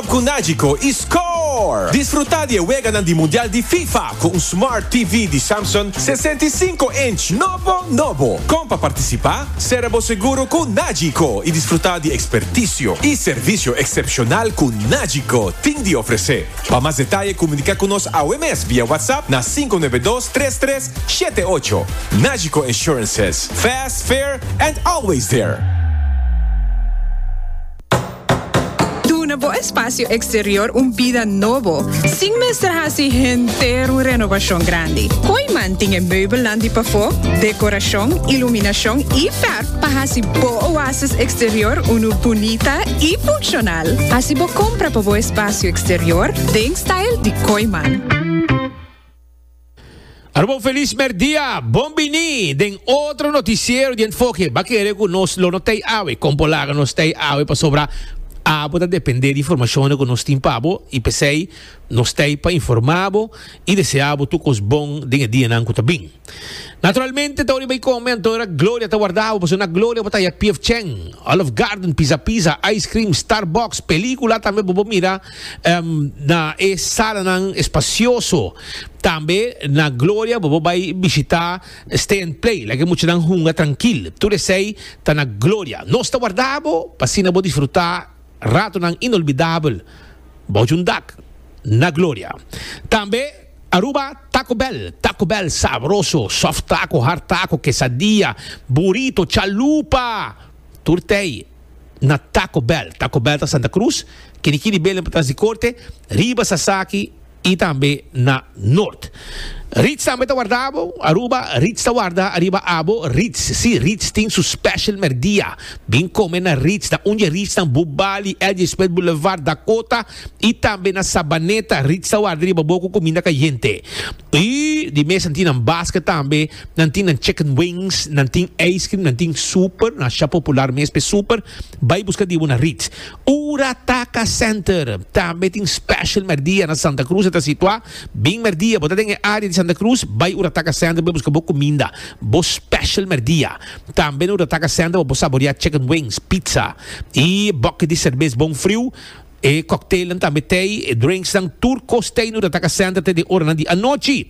Op ku Nagico i Score! Disfrutá di e weganan di Mundial di Fifa ku un Smart TV di Samsung sesenta i sinku inch nobo nobo. Kon pa partisipá? Sera bo seguro ku Nagico i disfrutá di ekspertisio i servisio eksepshonal ku Nagico tin di ofresé. Pa mas detaye komuniká ku nos awe mes via WhatsApp na sinku nuebe dos tres tres shete ocho. Nagico Insurances, fast, fair and always there! Duna bo espacio exterior un bida nobo, sin mester haci henter un renovacion grandi. Kooiman tin e meubelnan di pafó, decoracion, iluminacion y verf pa haci bo oasis exterior unu bunita y funccional. Haci bo compra pa bo espacio exterior den style di Kooiman. Arobo felis merdia, bon bini den otro noticiero di enfoke. Ba kere ku nos lo no tei awe? Kon por laga nos tei awe pasobra abo ta depende di informashonnan ku nos tin pa bo i p'esei nos tei pa informá bo i deseá bo tur kos bon den e dianan ku ta bin. Naturalmente ta ora di bai kome anto era gloria ta wardá bo pasobra na gloria bo ta haya pf Chang, Olive Garden, Pizza Pizza, ice cream, Starbucks, pelíkula tambe bo por mira. um, na e salanan espasioso, tambe na Gloria bo por bai bishita Stay and Play, la ke muchanan hunga trankil. Tur esei ta na Gloria. Nos ta warda bo pa asina bo disfruta ratonan inolbidabel bou di un dak na Gloria. Tambe Aruba Taco Bell, Taco Bell sabroso, soft taco, hard taco, quesadilla, burrito, chalupa, tur t'ei. na Taco Bell, Taco Bell ta Santa Cruz, kende ki di Belen pa tras di Corte, riba Sasaki y tambe na Noord. Ritz tambe ta warda abo, Aruba, Ritz ta warda ariba abo, Ritz, si, Ritz tin su special merdia. Bin come na Ritz, na un dje Ritznan, Buck Bali, LJ Smith Boulevard, Dakota y tambe na Sabaneta, Ritz ta warda riba bo cu cuminda cayente. Y di mesa tin nan basket tambe, nan tin nan chicken wings, nan tin ice cream, nan tin super, nan sha popular mes pe super, bay buska di bo na Ritz. Ura Taca Center tambe tin special merdia na Santa Cruz e ta situa bin merdia bo ta den e area di Santa Cruz bay Ura Taca Center bay buska bo cuminda, bo special merdia. Tambe na Ura Taca Center bo por saboria chicken wings, pizza y bucket di cerbes bon friu. E cocktailnan tambe tei, e drinksnan, tur cos tei, nu ta taca center te den oranan di anochi.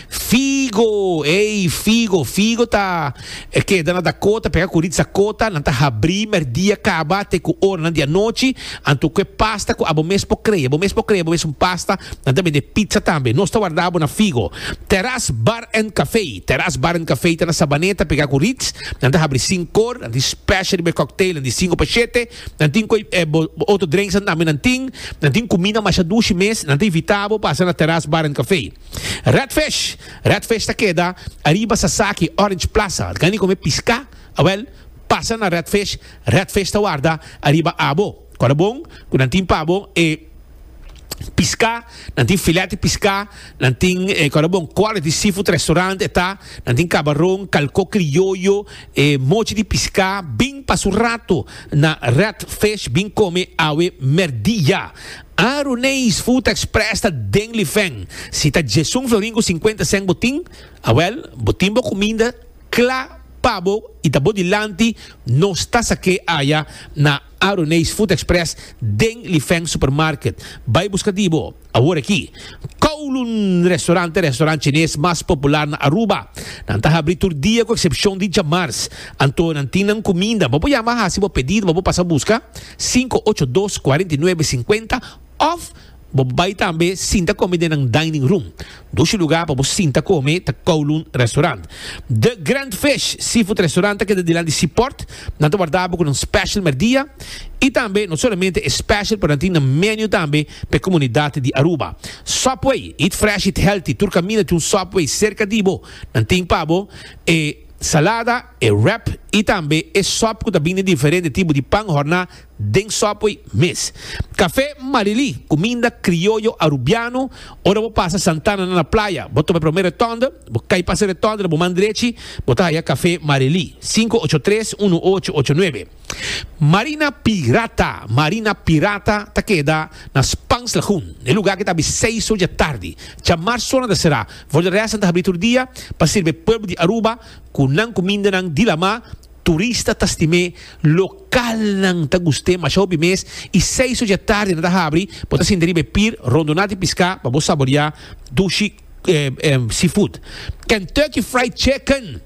Figo, ey, figo, figo ta e keda na Dakota, pega cu rit Sakota, nan ta habri merdia caba te cu oranan di anochi, anto cu e pasta cu abo mes por crea, bo mes por crea, bo mes un pasta, nan ta bende pizza tambe, nos ta warda abo na Figo. Terras Bar and Cafe, Terras Bar and Cafe ta na Sabaneta, pega cu rit, nan ta habri singcor, nan tin special riba e cocktailnan di singo pa shete, Nan tin cu e bo otro drenks nan tambe nan tin. Nan tin cuminda masha dushi mes. Nan ta invita bo pasa na Terras Bar and Café. Redfish! Redfish ta keda ariba Sasaki, Orange Plaza. Al gani come pisca? Awel, pasa na Redfish. Redfish ta warda ariba abo. Cora bon cu nan tin pa bo e. Piská, nan tin filèt di piská, nan tin e kòrda bon kòrda di seafood restaurant e ta, nan tin kabaron, kalkó krioyo, e mochi di piská bin pas un rato na Red Fish bin kome awe mèrdia. Aruneis Food Express ta den Lifèn. Si ta djèsun florin ku sinkuenta sènt bo tin, awèl, bo tin bo kuminda. Cla pa bo y ta bo dilanti nos ta sa cle aya na Aroneis Food Express den Lifeng Supermarket. Bay busca di bo awor aki. Kowloon Restaurant ta restaurant Chines mas popular na Aruba. Nan ta habri tur dia cu excepcion di djamars. Anto nan tin nan cuminda. Bo por yama haci bo pedido, bo por pasa busca, sinku ocho dos, kuarenta i nuebe, sinkuenta, of Bo bai tambe sinta kome den nan dining room. Dushi lugá pa bo sinta kome ta Kowloon Restaurant. The Grand Fish Seafood Restaurant ta keda dilanti Seaport. Nan ta wardá bo ku nan special merdia. I tambe no solamente e special pero nan tin nan menu tambe pa e komunidat di Aruba. Subway, eat fresh, eat healthy, tur kaminda tin un Subway serka di bo. Nan tin pa bo e salada, e wrap i tambe e sop ku ta bini diferente tipo di pan horná den Subway mes. Kafé Malili, kuminda krioyo arubiano, ora bo pasa Santana nan na playa, bo tuma e promé retònde, bo kai pasa e retònde na bo man drechi, bo ta haya Kafé Malili, sinku ocho tres unu ocho ocho nuebe. Marina Pirata, Marina Pirata ta keda na Spans Lagoon, e lugá ki ta habri seis or dje tardi, djamars sona ta será, for de rèst nan ta habrí tur dia pa sirbi e pueblo di Aruba ku nan kumindanan di lamá, Turista ta stim'é, lokalnan ta gust'é masha hopi mes i seis ocha tardi nan ta habri, bo ta sinti riba e pir rondona di piská pa bo saboriá dushi seafood. Kentucky Fried Chicken!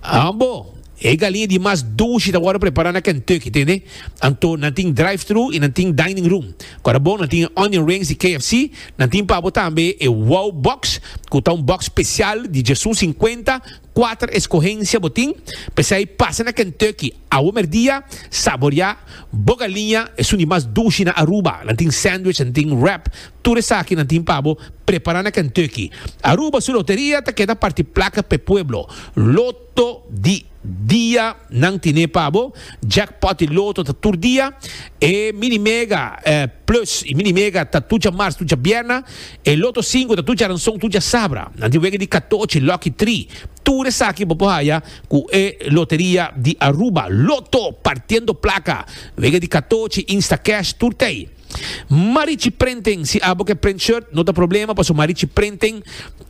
Ambo e galiña di mas dushi ta wòrdu prepará na Kentucky, tende? Anto nan tin drive-thru i nan tin dining room. Ku ta bon, nan tin e onion rings di KFC. Nan tin pa bo tambe e Wow Box, ku ta un bòks spesial di djesun sinkuenta. Kuater eskohensia bo tin, p'esei pasa na Kentucky awe merdia, saboriá bo galiña esun di mas dushi na Aruba. Nan tin sandwich, nan tin wrap, tur esaki nan tin pa bo prepará na Kentucky. Aruba su loteria ta keda parti plaka p'e pueblo. Loto di dia nan tine pa bo, jackpot di loto ta tur dia, e mini mega, eh, plus i mini mega ta tur djamars, tur djabierna, E loto sinku ta tutsha ranson, tutsha sabra. Nan tin wega di katochi, lucky tri. Tur esaki bo por haya ku e loteria di Aruba. Loto, partiendo plaka, wega di katochi, Instacash, tur ta ei. Marichi Printing, si abo ke print shirt, no ta problema pasobra Marichi Printing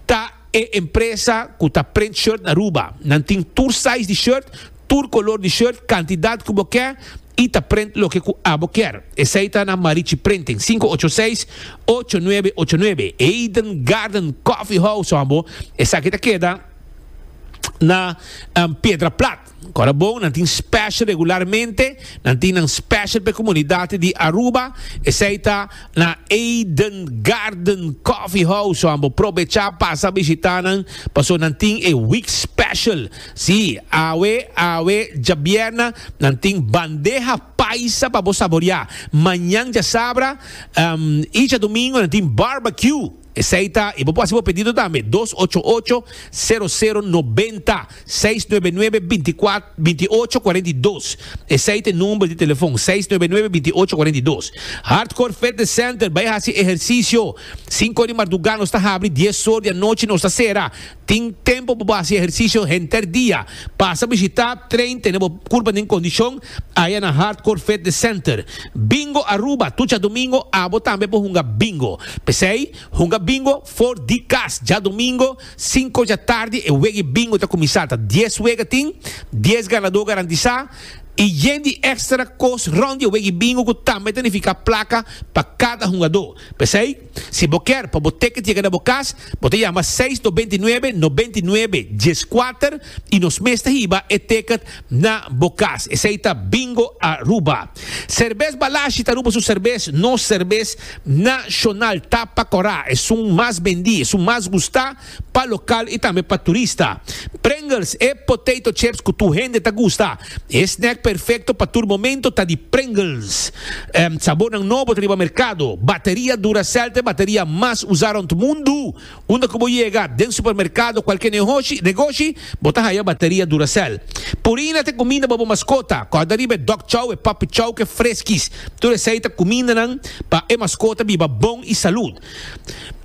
ta e empresa ku ta print shirt na Aruba. Nan tin tur size di shirt. tur color di shirt, cantidad cu bo ke y ta print loke cu abo kier. Esey ta na Marichi Printing, sinku ocho seis, ocho nuebe ocho nuebe, Eden Garden Coffee House Hombo, esaki ta keda na Pedra Plat. Corabou, nan tin special regularmente, nan tin nan special p'e comunidad di Aruba, esey ta na Eden Garden Coffee House Hombo, probecha pasa bishita nan, paso nan tin e week special. Sí, awe, awe, djabièrna, nan tin bandeha paisa pa bo saboriá. Mañan, djasabra, ehm, i djadumingo nan tin barbecue. Esei ta, i bo por hasi bo pedido tambe, dos ocho ocho, sero sero noventa, seis nuebe nuebe, binti kuat, binti ocho, kuarenta i dos. Esei ta e number di telefòn, seis nuebe nuebe, binti ocho, kuarenta i dos. Hardcore Fitness Center, bai hasi ehersisio. Sinko di mardugá nos ta habri, dies or di anochi nos ta sera. Tin tempo pa bo hasi ehersisio henter dia. Pasa bishita Train tene bo kurpa den kondishon aya na Hardcore Fitness Center. Bingo Aruba, tur djadomingo abo tambe por hunga bingo. P'esei, hunga bingo for di kas djadomingo sinku djatardi e wega di bingo ta kuminsá. Ta dies wega tin, dies ganadó garantisá i yen di èkstra kos rònt di e wega di bingo ku tambe ta nifiká plaka pa kada hungadó. P'esei. Si bo kier pa bo ticket yega na bo cas, bo ta yama seis no binti nuebe no binti nuebe dies kuater y nos mes ta hiba e ticket na bo cas. Esey ta Bingo Aruba. Serbes Balashi ta Aruba su serbes, nos serbes nacional, tapa cora. Esun mas bendi, esun mas gusta. pa local y tambe pa turista. Pringles, e potato chips cu tur hende ta gusta. E snack perfecto pa tur momento ta di Pringles. Sabornan nobo ta riba mercado. Bateria Duracell ta e bateria mas usa rond mundo. Unda cu bo yega, den supermercado, cualkier nehoshi, negoshi, bo ta haya bateria Duracell. Purina ta e cuminda pa bo mascota. Corda riba e Dog Chow, e Puppy Chow cu e Friskies. Tur esey ta cumindanan pa e mascota biba bon y salud.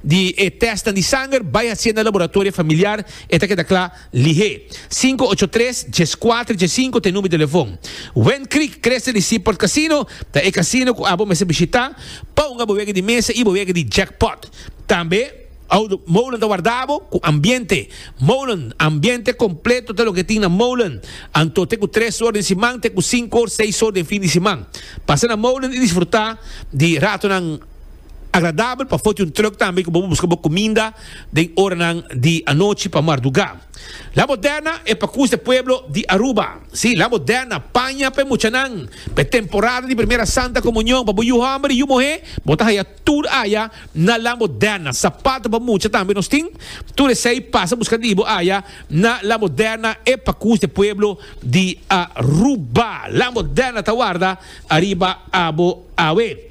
Di e tèstnan di sanger bai hasienda laboratorio familiar e ta keda kla lihé. Sinku ocho tres, djes kuater, djes sinku ta e number di telefon. Wend Creek Crested y Seaport Casino ta e casino ku abo mester bishita pa hunga bo wega di mesa y bo wega di jackpot. Tambe How the Molen ta warda abo ku ambiente Molen. Ambiente kompleto ta loke tin na Molen. Anto t'e ku tres or den siman t'e ku sinku or seis or den fin di siman. Pasa na Molen y disfruta di ratonan. agradabel pa foti un truck tambe ku bo por buska bo kuminda den oranan di anochi pa mardugá. La Moderna e pakus di e pueblo di Aruba. Sí, La Moderna paña pa e muchanan pa e temporada di Primera Santa Komunion pa bo yu hòmber i yu muhé, bo ta haya tur aya na La Moderna. Sapatu pa mucha tambe nos tin. Tur esei pasa buska di bo aya na La Moderna e pakus di e pueblo di Aruba. La Moderna ta warda ariba abo awe.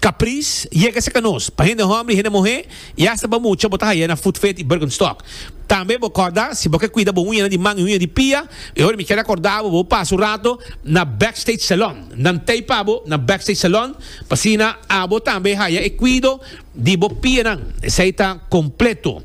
Caprice, yega cerca nos, pa hende homber y hende muher y hasta bo mucha bo ta haya na Food Fit y Birkenstock. Tambe bo corda si bo ke cuida bo uñanan di man y uña di pia, e ora mi ker acorda bo bo pasa un rato na Backstage Salon. Nan tey pa bo na Backstage Salon pa asina abo tambe haya e cuido di bo pianan, esey ta completo.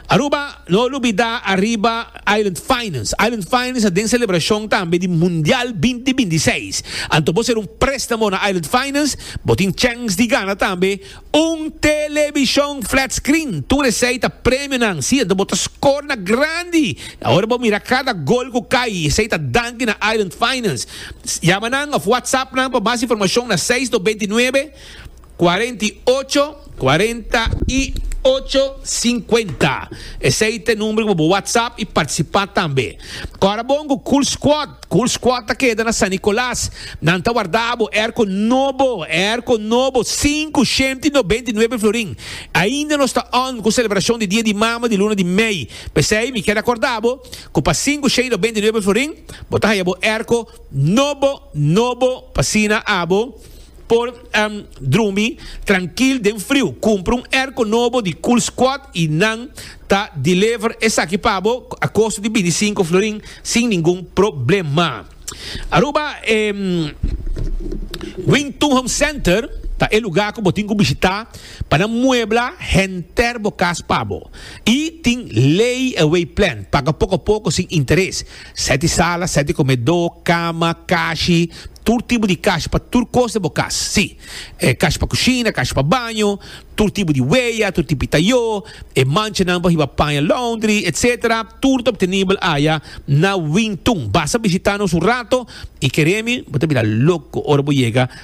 Aruba, no lubida ariba. Island Finance. Island Finance a den celebracion tambe di Mundial binti binti seis. Anto bo ser un prestamo na Island Finance, bo tin chens di gana tambe un television flat screen. Tur esey ta premionan, si, anto bo ta score na grandi. Ora bo mira cada gol cu cay, esey ta danki na Island Finance. Yama nan of WhatsApp nan pa mas informacion na seis noventa y nuebe. Cuarenta y ocho, cuarenta y ocho, cincuenta. Esey ta e number cu bo bo WhatsApp y participa tambe. Cora bon cu Cool Squad. Cool Squad ta keda na San Nicolas. Nan ta warda bo airco nobo, airco nobo, cinco shenta y nobenta y nuebe florin. Ainda nos ta on cu celebracion di Dia di Mama di luna di mei. P'esey mi kier a corda bo cu pa cinco shenta y nobenta y nuebe florin bo ta haya bo airco nobo, nobo, p'asina abo. por drumi trankil den friu. Kumpra un erko nobo di Coolsquad i nan ta deliver esaki pa bo a kosto di bintisinko florin sin ningun problema. Aruba e Wington Home Center ta e lugá ku bo tin ku bishitá pa nan muebla henter bo kas pa bo. I tin layaway plan, paga poko a poko sin interes. Seti sala, seti komedó, kama, kashi, tur tipo di kashi pa tur kos den bo kas, sí, e kashi pa kushina, kashi pa baño, tur tipo di weya, tur tipo di tayó, e manchanan pa hiba paña laundry, etc. Tur ta obtenibel aya na Wing Tun. Basta bishitá nos un rato i keré mi, bo ta bira loko ora bo yega.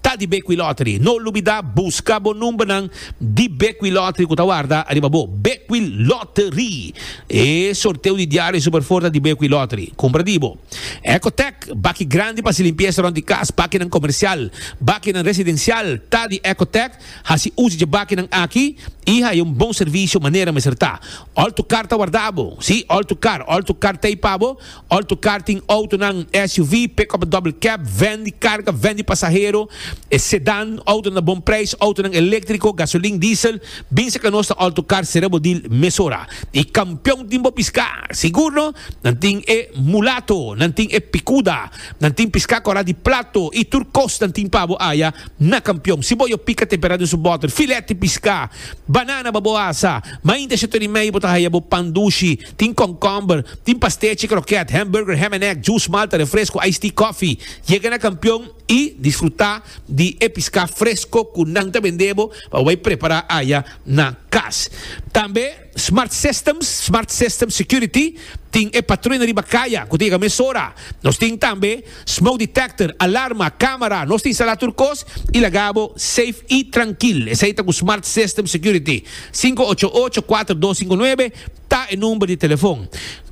Ta di Bequi Lottery. No lubida busca bo numbernan di Bequi Lottery cu ta warda ariba bo. Bequi Lottery. E sorteo di diario y Super Fort ta di Bequi Lottery. Cumpra di bo. Ecotec, baki grandi pa haci limpieza rond di cas, bakinan comercial, bakinan residencial ta di Ecotec. Haci uso dje bakinan aki y haya un bon servicio manera mester ta. All to car ta warda bo. Sí, all to car. All to car ta ey pa bo. Autocar tin autonan, SUV, pick-up double cab, ven di carga, ven di pasahero, e sedan, autonan na bon prijs, autonan electrico, gasolin, diesel. Bin sa ca nos ta Autocar cera bo deal mesora. E campeon tin bo pisca, sigur no? Nan tin e Mulato, nan tin e Picuda, nan tin pisca cora di plato y tur cos nan tin pa bo aya na Campeon. Si bo yo pica tempera den su boter, filet di pisca, banana pa bo asa, mainta chetorimey bo ta haya bo pan dushi. Tin konkomber, tin pastechi, krokèt, hèmburger, hèm en èg, jus, malta, refresko, ice tea, kòfi. Yega na Kampion i disfrutá di e piská fresko ku nan ta bend'é bo pa bo bai prepará aya na kas. Tambe Smart Systems, Smart Systems Security, tin e patruya riba kaya ku ta yega mesora. Nos tin tambe Smoke detector, alarma, camera, nos ta instala tur cos y laga bo safe y trankil. Esey ta cu Smart System Security. Sinku ocho ocho, kuater dos sinku nuebe ta e number di telefon.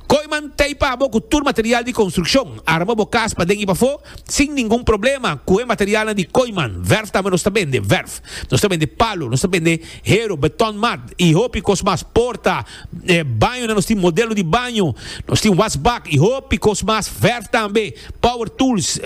Koyman ta y pa bo cu tur material di construccion. Arma bo cas paden y pafo sin ningun problema cu e materialnan di Koyman. Verf tambe nos ta bende. Verf. Nos ta bende palo, nos ta bende hero, beton mat y hopi cos mas, porta, E bañonan nos tin modelo di baño, nos tin wasbak i hopi kos mas, vèrf tambe, power tools.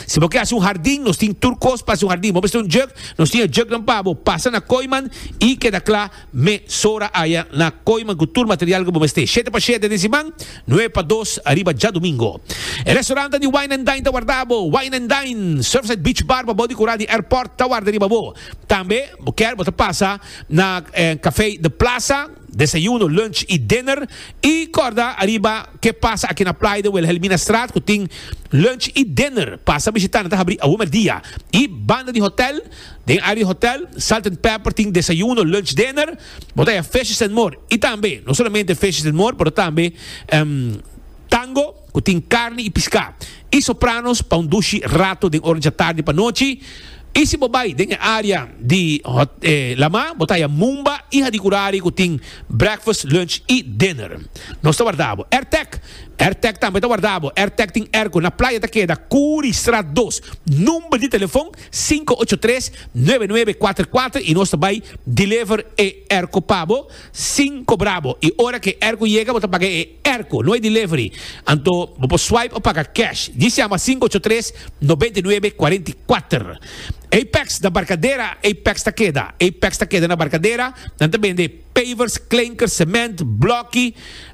Si bo ke hasi un hardin, nos tin tur kos pa hasi un hardin. Bo mester un jug, nos tin e jugnan pa bo pasa na koiman i keda kla mesora aya na koiman ku tur material ku bo mester. Shete pa shete den siman, nuebe pa dos ariba djadumingo. E restorantan di Wine and Dine ta warda bo. Wine and Dine, Surfside Beach Bar pa bou di kura di airport ta warda riba bo. Tambe bo kier bo ta pasa na Cafe de Plaza, desayuno, lunch y dinner. Y corda ariba ke pasa aki na Playa de Wilhelminastraat cu tin lunch y dinner. Pasa bishitana ta habri awo merdia. Y banda di hotel, den área di hotel, Salt and Pepper tin desayuno, lunch, dinner. Bo ta haya fishes and more. Y tambe no solamente fishes and more pero tambe tango. ku tin karni i piská, i sopranos pa un dushi rato den ora djatardi pa nochi. I si bo bai den e área di Lamá bo ta haja Mumba i Hadikurari ku tin breakfast, lunch i dinner. Nos ta warda bo. Ertèk Ertèk tambe ta warda bo. Ertèk tin erko na playa ta keda Kuri strat dos. Number di telefon sinku ocho tres nuebe nuebe kuater kuater i nos ta bai deliver e erko pa bo sin kobrá bo. I ora ku e erko yega bo ta paga e. Erco, no hay delivery. Anto bo por swipe o paga cash. Djis yama sinku ocho tres, nobenta i nuebe, kuarenta i kuater. Apex na Barcadera, Apex ta keda. Apex ta keda na Barcadera. Nan ta bende pavers, klinker, cement, blokki.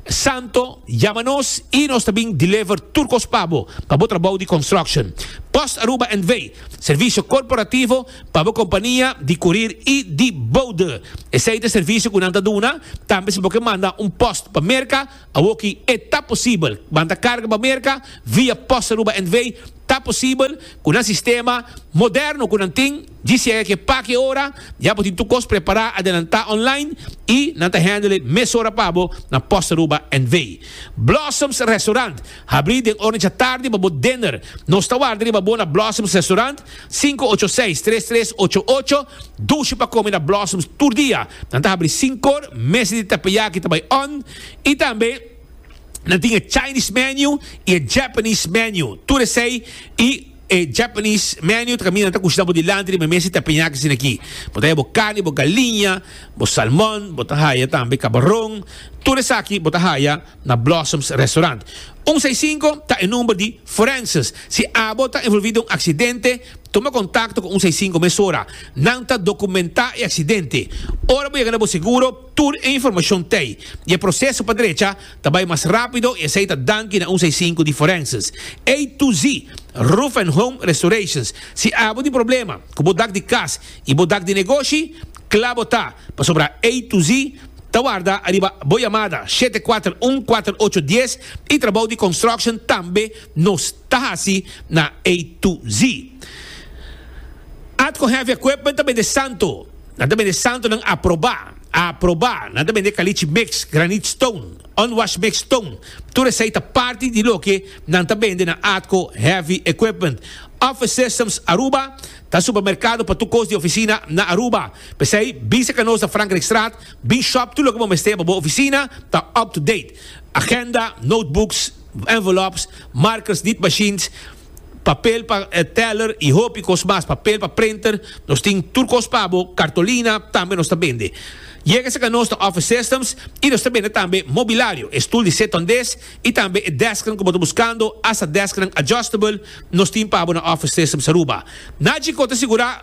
Santo, yama nos i nos ta bin deliver tur kos pa bo, pa bo trabou di construction. Post Aruba NV, servisio corporativo. pa bo kompania di kurir i di boude. Esei ta servisio ku nan ta duna. Tambe si bo ke manda un post pa Merka, awoki e ta posibel. Manda karga pa Merka via Post Aruba NV. ta posibel ku nan sistema moderno ku nan tin. Dji siaga ke pake ora. Ya bo tin tur kos prepará adelantá online i nan ta hèndele mesora pa bo na Post Aruba NV. Blossoms Restaurant Habrí den oracha tardi pa bo dinner. Nos ta warda riba bo na Blossoms Restaurant, sinku ocho seis, tres tres ocho ocho. Dushi pa komi na Blossoms tur dia. Nan ta habrí sinku or, mesa di tepeyaki ta bai on i tambe nan tin e Chinese menu i e Japanese menu. Tur esei i e Japanese menu ta kaminda nan ta kushina bo dilanti riba e mesa di tepeyaki asina aki. Bo ta haya bo karni, bo galiña, bo salmon, bo ta haya tambe kabaron, tur esaki bo ta haya. na Blossoms Restaurant. Un sai sinku ta e number di Forenses. Si abo ta envolvi den un aksidente, tuma kontakto ku un sai sinku mesora. Nan ta dokumentá e aksidente. Ora bo yega na bo seguro, tur e informashon t'ei. I e proseso pa drecha ta bai mas rápido i esei ta danki na un sai sinku di Forenses. A to Z Roof and Home Restorations. Si abo tin problema ku bo dak di kas i bo dak di negoshi, kla bo ta pasobra A to Z Ta warda ariba bo yamada shete kuater un kuater ocho dies y trabou di construction tambe nos ta haci na A to Z. Atco heavy equipment ta bende santo, nan ta bende santonan aproba, aproba, nan ta bende caliche mix, granite stone, unwashed mix stone, tur esey ta parti di loke nan ta bende na Atco heavy equipment. Office systems Aruba. Ta supermerkado pa tur kos di ofisina na Aruba. P'esei, bin seka nos na Frankrijkstraat, bin shòp tur loke bo mester pa bo ofisina ta up to date, agenda, notebooks, envelops, markers, nit mashins, papel pa teller i hopi kos mas, papel pa printer, nos tin tur kos pa bo, kartolina tambe nos ta bende. Yega seka nos na Office Systems i nos ta bende tambe mobilario, e stul di sit-on-dis, y tambe e desknan cu bo ta buscando, hasta desknan adjustable, nos tin pa bo na Office Systems Aruba. Nagico ta sigura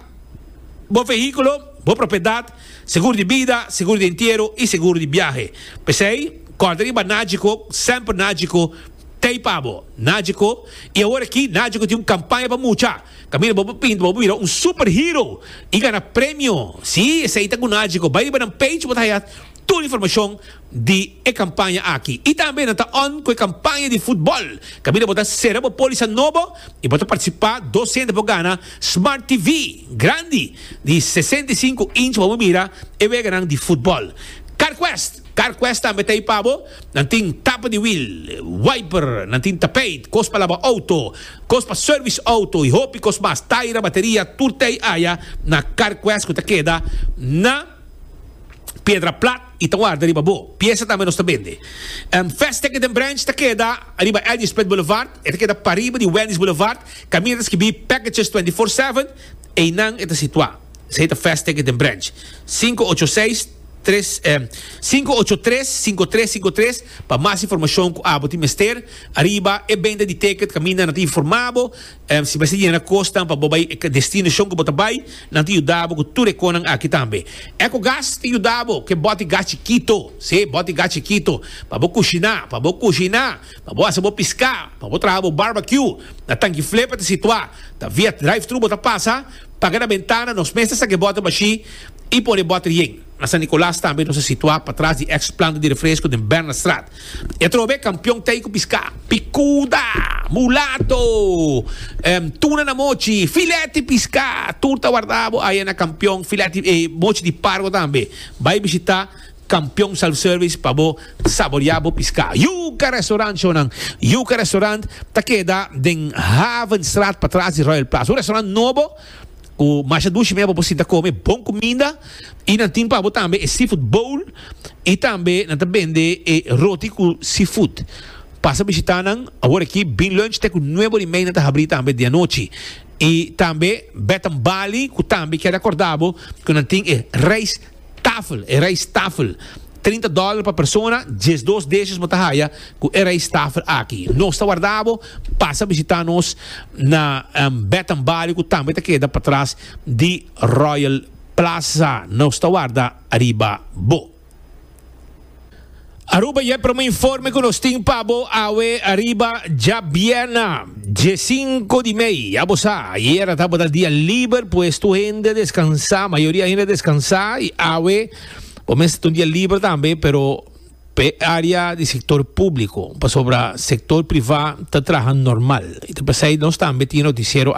bo vehiculo, bo propiedad, seguro di bida, seguro di entiero y seguro di biahe. P'esey, corda riba Nagico, semper Nagico ta ey pa bo. Nagico, y awor aki Nagico tin un campaña pa mucha, caminda bo pa pinta bo pa bira un superhero y gana premio. Sí, esey ta cu Nagico, bay riba nan page bo ta haya tur informashon di e kampaña aki i tambe nan ta on ku e kampaña di futbòl kaminda bo ta sera bo pólisa nobo i bo ta partisipá dos hende por gana Smart TV grandi di sesenta i sinku inch pa bo mira e weganan di futbòl CarQuest CarQuest tambe ta ei pa bo nan tin tapa di wiel wiper nan tin tapeit kos pa laba outo kos pa sèrvis outo i hopi kos mas taira bateria tur ta ei aya na CarQuest ku ta keda na. Piedra plat y ta warda riba bo. Pieza tambe nos ta bende. Vestec den Branch ta keda riba Eddie Smith Boulevard. E ta keda pariba di Wendy's Boulevard, caminda ta skibi Packages 24/7. Einan e ta situa. Esey ta Vestec den Branch. Sinku ocho seis tres, sinku ocho tres sinku tres sinku tres pa mas informacion cu abo tin mester. Ariba e benda di ticket caminda na ta informa bo. Si mester yena kosnan pa bo bai e destinashon ku bo ta bai, nan ta yuda bo ku tur e konan aki tambe. Ekogas ta yuda bo ku e bòti gas chikito, sí, bòti gas chikito, pa bo kushiná, pa bo kusiná, pa bo hasi bo piská, pa bo traha bo barbecue. Na tanki flepa ta situá, ta via drive-thru bo ta pasa, paga na bentana, nos mes ta saka e bòter bashí i pone e bòter yen. Na San Nicolas tambe nos a situá patras di ex planta di refresco den Bernardstraat. E atrobe kampion t'ei ku piská, pikuda, mulato, tuna na mochi, fileti piská, tur ta wardá bo aya na kampion, fileti, mochi di pargo tambe. Bai bishitá Kampion Self-Service pa bo saboriá bo piská. Yuka Restaurant Shonan, Yuka Restaurant ta keda den Havenstraat patras di Royal Plaza, un restaurant nobo, Ku masha dushi mei bo por sinta kome bon kuminda i nan tin pa bo tambe e seafood bowl i tambe nan ta bende e roti ku seafood. Pasa bishitá nan awor aki bin lunch te ku nuebo di mei nan ta habrí tambe di anochi. I tambe Bed and Bali ku tambe keda kordá bo ku nan tin e reis Tafel, e rijsttafel. Trinta dòler pa persona, diesdos deshos bo ta haya ku e rijsttafel aki. Nos ta warda bo, pasa bishita nos na Bath and Body ku tambe ta keda patras di Royal Plaza. Nos ta warda ariba bo. Aruba yeh promo informe cu nos tin pa bo awe ariba djabiena diesinco di mei. Ya bo sa, ayer a tabata dia liber pues tur hende a descansa, mayoria hende a descansa y awe bo mester tin un dia liber tambe pero pa e area di sector publico pasobra sector priva ta traha normal y ta p'esey nos tambe tin e noticiero.